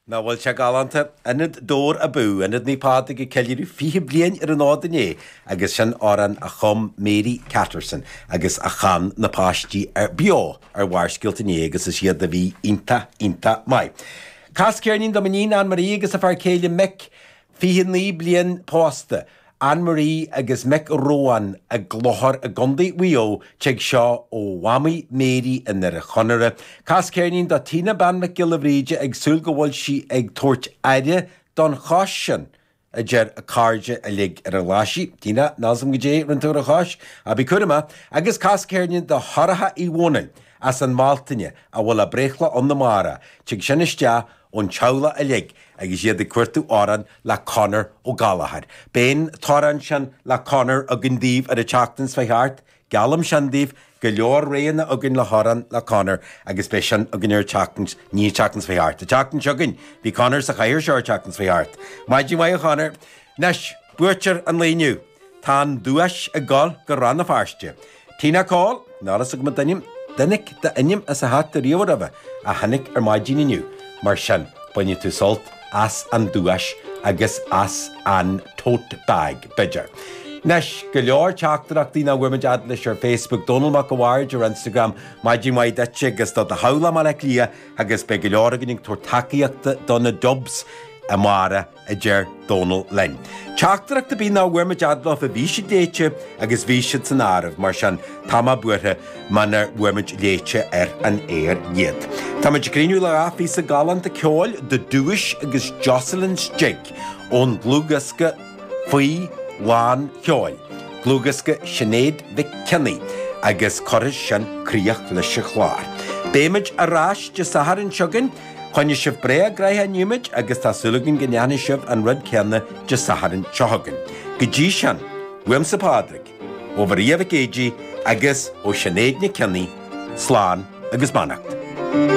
Nach bhfuil sé galánta? Ionad Dobhair Abú! Ionad Naomh Pádraig ag ceiliúradh 20 bliain ar an fhód inné agus sin amhrán a chum Mary Catterson agus a chan na páistí beo ar Bharrscéalta inné agus is iad a bhí iontach, iontach maith. Cas ceirnín do m'iníon, Ann Marie agus a fear céile Mick. 29 bliain pósta, Ann Marie agus Mick Ruane i gClochar i gContae Mhaigh Eo Tig seo ó Mhamaí Mary i nDoire Chonaire Cas ceirnín do Tina Bean Mhic Giolla Bhríde ag súil go bhfuil sí ag tabhairt aire don chos sin, a deir a cairde uilig ar an Ghlaisigh, Tina, níl a fhios agam goidé a rinn tú ar an chos, ach bí cúramach Agus cas ceirnín do Shorcha Uí Dhomhnaill as an mBealtaine a bhfuil a breithlá ann amárach Tig sin isteach ón teaghlach uilig agus iad ag cuartú amhrán le Conor Ó Gallchóir. Beidh an t-amhrán sin le Conor againn daoibh ar an tseachtain seo a chuaigh thart. Geallaim sin daoibh, go leor roghanna againn le hamhrán le Conor agus beidh sin againn ar an tseachtain, ní an tseachtain seo a chuaigh thart, an tseachtain seo chugainn. Bhí Conor sa chathaoir seo an tseachtain seo a chuaigh thart. Maidin mhaith a Chonor. Anois, buaiteoir an lae inniu. Tá an duais ag dul go Rann na Feirste. Tina Coll, níl a fhios agam an t-ainm, an dtáinig d'ainm as an hata riamh roimhe, ach tháinig ar maidin inniu, mar sin bainfidh tú sult as an duais agus as an tote bag, b'fhéidir. Anois, go leor teachtaireachtaí nach bhfuair muid fhad leis ar Facebook, Dónall Mac a' Bhaird ar Instagram, Maidin mhaith duit agus do do theaghlach i mBaile Átha Cliath agus beidh go leor againn ag tabhairt tacaíochta do na Dubs amárach a deir Dónall linn. Teachtaireacht ar bith nach bhfuair muid fhad leofa, bhí siad léite agus bhí siad san áireamh, mar sin tá mé buartha muna bhfuair muid léite ar an aer iad. Tá muid ag críochnú le dhá phíosa galánta ceoil, The Duais agus Jocelyn's Jig ón dlúthdhiosca Faoi Lán Ceoil, dlúthdhiosca Shinéad Nic Cionnaith, agus cuirfidh sin críoch leis an chlár. Beidh muid ar ais Dé Sathairn seo chugainn. Choinnigh sibh breá gnaitheach inniu muid agus tá súil againn go ndéanfaidh sibh an rud céanna Dé Sathairn seo chugainn. Go dtí sin, uaimse Pádraig, ó Mharia Mhic Géidigh agus ó Shinéad Nic Cionnaith, slán agus beannacht.